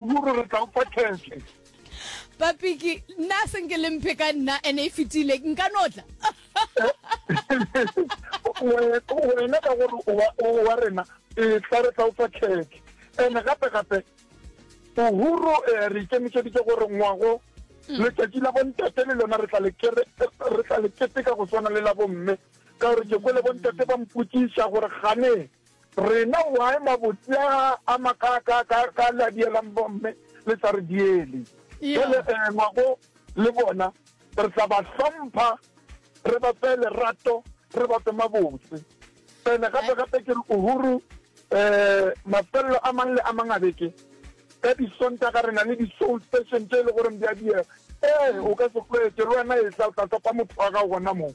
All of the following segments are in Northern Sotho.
Ruri re tla ufa tšhelete. Papiki, nna se nke le mphe ka nna ene e fetile nka notla. Wena ka gore o wa rena e tla re tla ufa tšhelete. Ene gape gape Uhuru eh, re ikemišeditše gore ngwago mm. letšatši la bontate le lona re tla le keteka go swana le la bomme ka gore ke kwele bontate ba mpotšiša gore gane Rena why mabotse a a ma ka ka ka ka la dielang bomme le sa re diele. Jale eh ngwago le bona re tla ba hlompha re ba fe lerato re ba fe mabotse. Ene gape gape ke re uhuru eh mafello a mang le a mang a beke ka di sontaga re na le di soul session tse le gore di a diega. Eh o ka se kwete le wena e tla o tla topa motho wa gago gona mo.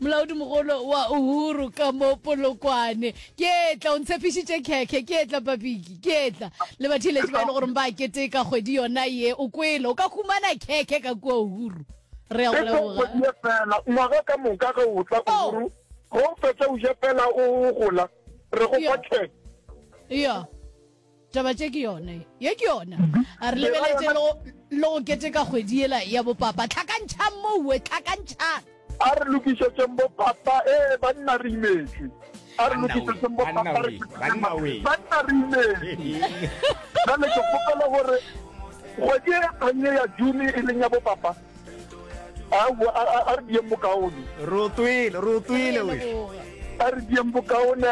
Molaodimogolo wa Uhuru ka mo Polokwane. Ke etla, o ntshepišitše khekhe, ke etla Papiki, ke etla. Le batheeletši ba e le goreng ba keteka kgwedi yona ye, o kwele, o ka humana khekhe ka kua Uhuru. Re a go leboga. Esong kgwedi ye feela, ngwaga ka moka ge o tla Uhuru, ge o fetša o je feela o gola, re go fa khekhe. Yo. taba tše ke yone ye ke yona a re lebeletse le go- le go keteka kgwedi yela ya bopapa tlhakantšhang moue tlhakantšhang a re lokišetseng bo papa ee banna re imetšwe a re Banna we, lokišetseng bo banna papa re we, fihlile banna ma- we. banna re imetšwe jale ke kgopela gore kgwedi e kganye ya june e leng ya bo papa a re diyeng bokaone re o twele re o twele we a re diyeng bokaone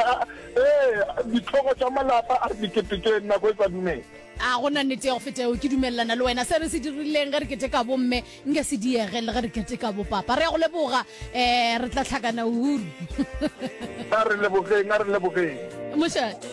ee ditlhogo tša malapa a re diketekeng nako e sa dumela a go na nnete ya go feta eo ke dumelelana le wena se re se dirileng ge re keteka bomme nke se diege le ge re keteka bopapa re ya go leboga um re tla tlhakana uru a re lebogeng a re lebogeng mošate